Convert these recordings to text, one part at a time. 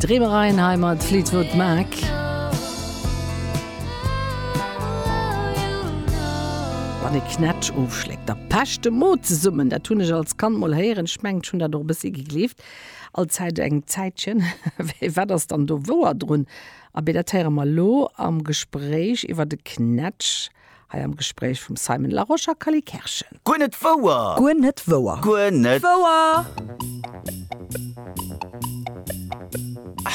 Dreemereien hei mat Fleetwood Mac. Wann ee Knätsch ofschléckt, da pecht de Mo zesummen. Dat hunn ech als Kand mol héieren. Ech mengen, ech hunn dat och e bëssi gegleeft, allzäit eng Zäitchen. Mee wat ass dann do wouer drun? Abee, dat héiere mer elo am Gespréich iwwer de Knätsch. Hei am Gespréich vum Simon Larosche a Cally Kerschen. Guer net wouer! Guer net wouer! Guer net wouer!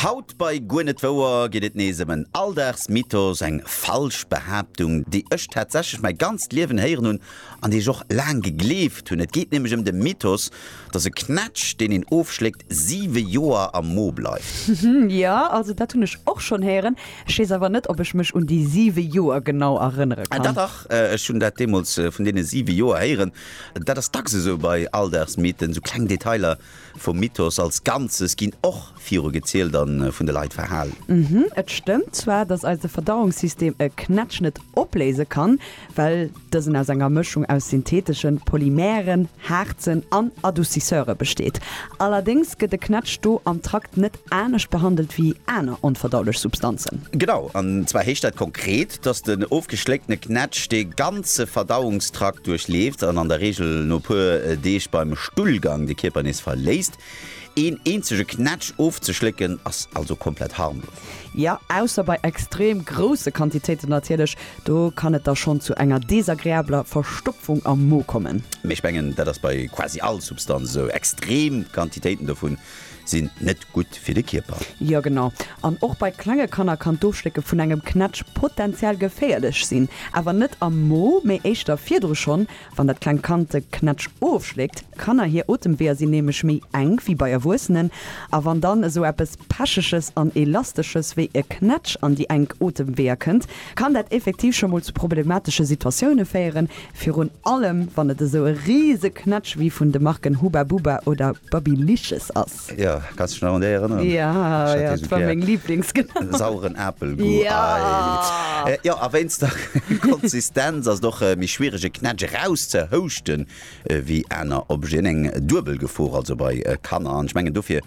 Haut bei Guer net wouer geet et nees ëm en Alldagsmythos, eng falsch Behaaptung, déi ech tatsächlech mäi ganzt Liewen héieren hunn an déi ech och laang gegleeft hunn. Et geet nämlech ëm de Mythos dass e Knätsch, deen een ofschléckt, siwe Joer am Mo bleift. Jo, also dat hunn ech och schonn héieren. Ech weess awer net, ob ech mech un déi siwe Joer genau erënnere Ah, kann. dach, ech hunn dat deemools vun deene siwe Joer héieren. Dat ass dacks esou bei Alldagsmythen, esou kleng Detailer vum Mythos als Ganzes ginn och virugezielt a vun de Leit verhalen. Et stëmmt zwar, dass eise Verdauungssystem e Knätsch net opléise kann, well dësen aus enger Mëschung aus syntheteschen Polymeren, Haarzen an Adoucisseure besteet. Allerdéngs gëtt de Knätsch do am Trakt net anescht behandelt wéi aner onverdaulech Substanzen. Genau, an zwar heescht dat konkret, dass den ofgeschléckte Knätsch de ganze Verdauungstrakt duerchleeft an an der Reegel no e puer Deeg beim Stullgang de Kierper nees verléisst. Een eenzege Knätsch ofzeschlécken ass also komplett harmlos. Jo, ausser bei extrem grousse Quantitéiten natierlech, do kann et da schonn zu enger desagreabler Verstopfung am Mo kommen. Mee ech mengen, dat ass bei quasi all Substanz esou. Extrem Quantitéiten dovun sinn net gutt fir de Kierper. Jo genau. An och bei klenge Kanner kann d'Ofschlécke vun engem Knätsch potenziell geféierlech sinn. Awer net am Mo, mee éischter virdru schonn, Wann dat klengt Kand de Knätsch ofschléckt, Kanner hir Otemweeër sinn nämlech méi enk wéi bei Erwuessenen, a wann dann esou eppes Pecheges an Elastesches wéi e Knätsch an déi enk Otemweeër kënnt, kann dat effektiv scho mol zu problematesche Situatioune féieren, virun allem wann et esou e rise Knätsch wéi vun de Marken Hubba Bubba oder Babyliches ass. Jo, kanns dech nach un déi erënneren? Ja, ja, dat war meng Lieblings, genau. Sauren Apelgoût, ei! Ja! Jo, a wéinst der Konsistenz ass et och méi schwiereg e Knätsch erauszehouschten ewéi aner Objeten. Eng duebel Gefor also bei Kanner. An ech mengen dofir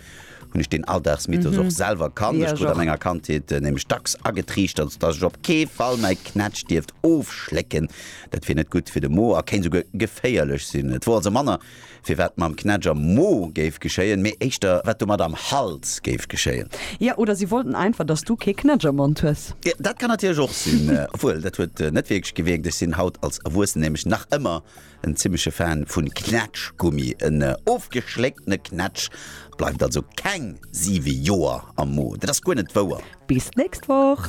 hunn ech deen Alldagsmythos och selwer kannt. Ech krut a menger Kandheet nämlech dacks agetriichtert, datt ech op kee Fall mäi Knätsch dierft ofschlécken, dat wier net gutt fir de Mo a kéint esouguer geféierlech sinn. Et wor also manner firwat mam Knätsch am Mo géif geschéien, mee éischter wat domat am Hals géif geschéien. Ja, oder si wollten einfach, dass du kee Knätsch am Mond hues. Dat kann natierlech och sinn. Obwuel, dat huet net wierklech gewierkt. Ech sinn haut als Erwuessen nämlech nach ëmmer en zimleche Fan vu Knätschgummi. En ofgeschlécktene Knätsch bleift also keng siwe Joer am Mo. Dat ass guer net wouer. Bis d'nächst Woch!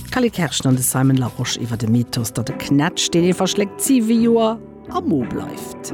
D'Kelly Kerschen an de Simon Larosche iwwer de Mythos, datt e Knätsch, deen ee verschléckt, siwe Joer am Mo bleift.